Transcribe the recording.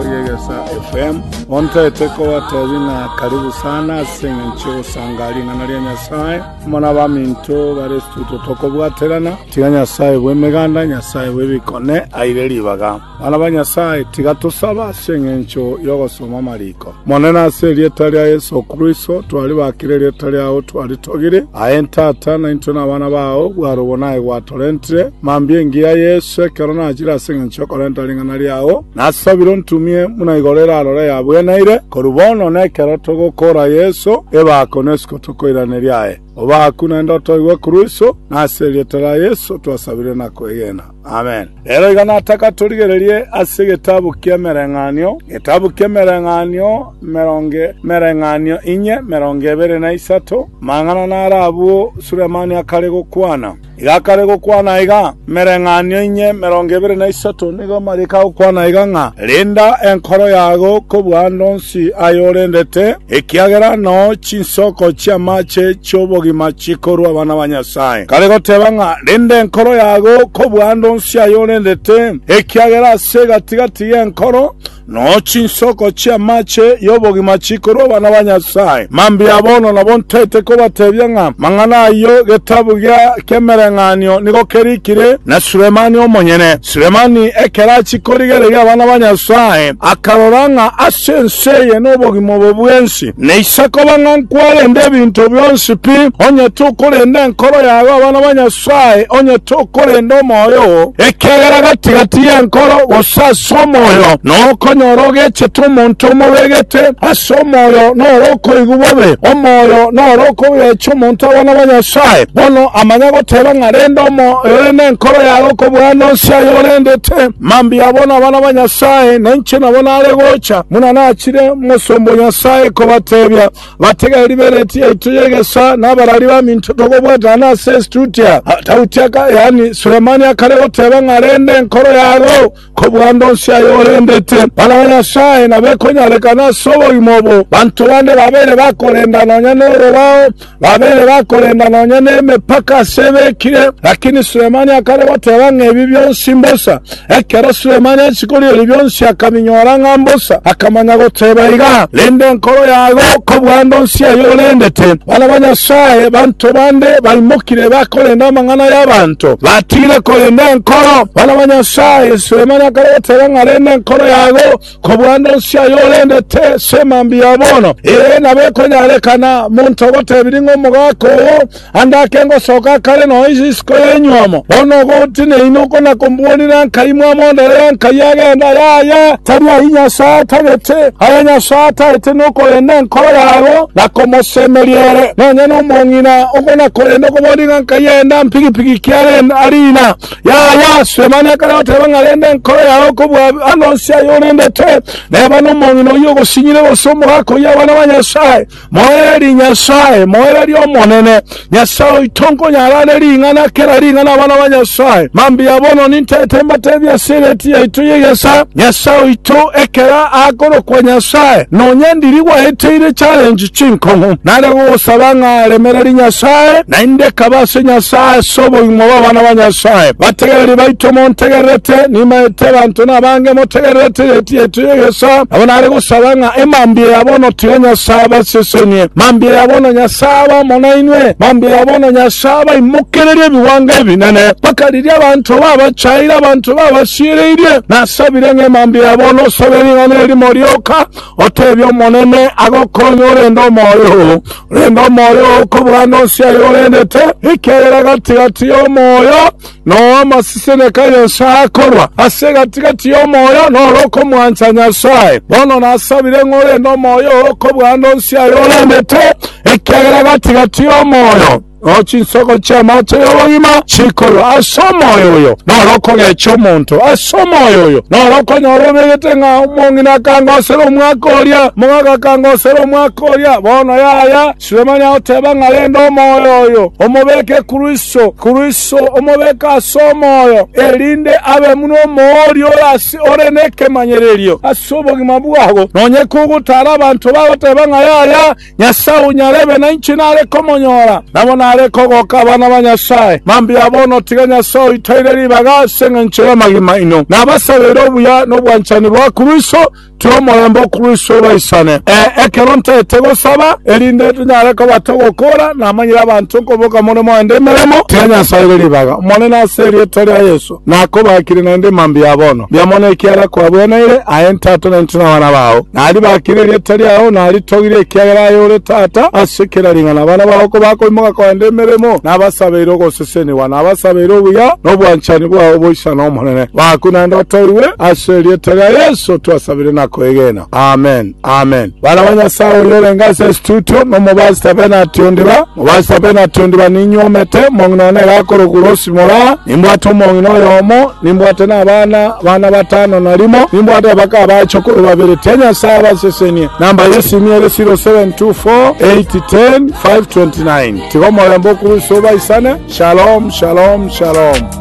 Riegesa FM. Montaete kobatebia ng'a karibu sana ase eng'encho y'ogosangaa ring'ana ria Nyasae amo n'abaminto bare studio tokobwaterana. Tiga Nyasae bw'emeganda, Nyasae bw'ebikone aire ribaga. Bana ba Nyasae, tiga tosabe ase eng'encho y'ogosoma amariko. Monene ase erieta ria Yeso Kristo, twaribakire erieta riao twaritogire. Aye Tata, naintwe nabana bao, bware obonaye gwatorentire. Mambia engiya Yeso ekero nachire ase eng'encho y'okorenta ring'ana riao. Nasabire ontumie buna igoro erarore yabwenaire korwa bono na ekero togokoora Yeso ebaako na isiko tokoiraneria aye. Obaakwe naende otoigwe korwa iso, na ase erieta ria Yeso twasabire na kwegena. Amen. Rero iga nataka torigererie ase egetabu ki'Emereng'anio, egetabu ki'Emereng'anio emerongo Emereng'anio inye, emerongo ebere na isato, amang'ana naro abwo Sulemani akare gokwana. Igakare gokwana aiga, mereng'anio inye emerongo ebere na isato nigo marika gokwana aiga ng'a, Renda enkoro yao kobua ande onsi aye orendete, ekiagera nao chinsoko chi'amache chi'obogima chikorua abana ba Nyasae. Kare goteba ng'a, Renda enkoro yao kobua ande onsi aye orendete, ekiagera ase egati-gati y'enkoro Nao chinsoko chi'amache y'obogima chikorua abana ba Nyasae. Mambia bono nabo ntaete kobatebia ng'a mang'ana ayio getabu gia kemereng'anio nigo kerikire na Sulemani omonyene. Sulemani ekero achia korigereria abana ba Nyasae, akarora ng'a ase ense eye nobogima obo bwensi, na Isiko bang'a nkwarende ebinto bionsi pi, onye tokorenda enkoro yago abana ba Nyasae, Nyasae onye tokorenda omoyo oo, ekiagera gati-gati y'enkoro gose ase omoyo nokonyora ogechete omonto omobegete ase omoyo noro okoigwa bobe. Omoyo noro okogecha omonto abana ba Nyasae. Bono amanya goteba ng'a renda omoyo ore nenkoro yaye okobua nonsi aye orendete. Mambia bono abana ba Nyasae, na inche nabo nare gocha, buna nachire Omosomba o Nyasae kobatebia. Batiga eribereti yaito y'egesoa na abarari baminto togobwatana ase Estutia. Daudi, yaani Sulemani, akare goteeba ng'a rende enkoro yabo kobua ande onsi aye orendete. Bana ba Nyasae nabekonyarekana ase obogima obo. Banto bande babeire bakorenda nonya norobao, babeire bakorenda nonya nemepaka ase ebekire, lakini Sulemani akare goteeba ng'a ebi bionsi mbosa. Ekero Sulemani achia koria ebi bionsi akabinyora ng'a mbosa, akamanya goteba iga, Rende enkoro yago kobua ndonsi ayio orendete. Bana ba Nyasae banto bande baimokire bakorenda amang'ana y'abanto, batigire korenda enkoro. Bana ba Nyasae, Sulemani akare goteba ng'a rende enkoro yago, Kobua nensi aya orendete sema mbuya bono, ee, nabo ekonyarekana monto ogotebirie ng'a omogaka oo ande ake ngosoka akare noise isiko y'enywomo. Bono ogote neino okonakombuonire ankai mwamondorere ankai agenda, yaya, tari ayio Nyasae atagete, aya Nyasae atagete nokorenda enkoro yabo na komosemeria ere. Nonya nomong'ina okonakorenda okoboria ng'a nkai enda mpigipigi ki arenda, arina. Yaya ase amani akarateba ng'a rende enkoro yao kobua ano onsi aya orendete, neba nomong'ina oyio ogosinyire gose omogaka oyio abana ba Nyasae, moererie Nyasae, moererie Omonene, Nyasae oito nkonyara are ring'ana, kera ring'ana abana ba Nyasae. Mambia bono nintete mbatebie ase eredii yaito y'egesa, Nyasae oito ekera akorokwa Nyasae, nonya ndiri gwaeteire challenge, chinkong'u, nare gosaba ng'a aremereri Nyasae, naende kaba ase Nyasae ase obogima bw'abana ba Nyasae. Bategereri baito montegererete, nimaete abanto nabange motegererete riaito yaito y'egesaa, nabo nare gosaba ng'a emambia ya bono tiga Nyasae abasesenie, mambia ya bono Nyasae abe amo nainwe, mambia ya bono Nyasae abaimokererie ebigwango ebinene, mpaka riria abanto babachaeire, abanto babasiereirie. Nasabire ng'a emambia ya bono osabe ring'ana erimo rioka, Otebie Omonene agokonye orende omoyo, rende omoyo oo okobua nonsi aye orendete, ekiagera gati-gati y'omoyo noamasiseneka a Nyasae akorwa, ase egati-gati y'omoyo noro okomwancha Nyasae. Bono nasabire ng'a orende omoyo oo okobua nonsi aye orendete, ekiagera gati-gati y'omoyo. Nao chinsoko chi'amache y'obogima chikorwa ase omoyo oyo, naro okogecha omonto ase omoyo oyo, naro okonyora obegete ng'a omong'ina akangosera omwaka oria, omogaka akangosera omwaka oria. Bono yaya, Sulemani agoteba ng'a rende omoyo oyo omobeke korwa iso, korwa iso omobeke ase omoyo, erinde abe buna omooria ore ase ore nekemanyererio ase obogima bwabo, nonye kogotaara abanto bagoteba ng'a yaya, Nyasae onyarebe nainche nare komonyora, nabo nare kogoka abana ba Nyasae. Mambia bono tiga Nyasae oitaire ribaga ase engencho y'amagima aino. Nabasabere obuya nobwanchani bwa Kristo, tiri omorembe o Kristo obaisane. Ee, ekero ntaete gosaba, erinde tonyare kobata ogokora, namanyire abanto nkoboka more moende emeremo, tiga Nyasae aire ribaga. Omonene ase erieta ria Yeso. Nakobakire naende mambia ya bono, mbia mono ekiagera kwabweneire, aye Tata, na intwe nabana bao. Naribakire erieta riao, naritogire, ekiagera aye ore Tata, ase kera ring'ana abana bao kobakoimoka kogenda emeremo, nabasabeire ogosesenigwa, nabasabeire obuya na obwanchani bwao boichana Omonene. Baakwe naende otoigwe, ase erieta ria Yeso twasabire na koegena. Amen, amen. Bana ba Nyasaye oyorenge ase estudio nomobasi tabe nationdiba, mobasi tabe nationdiba ninywomete omong'ina one gakorokwa Rosimora, nimbwate omong'ina oyomo, nimbwate nabana bana batano na rimo, nimbwate abaka abache korwa babere, tia Nyasaye abasesenie. Namba yesimu ere 0724810529. Tiga omorembe okuruse obaisane. Shalom, shalom, shalom.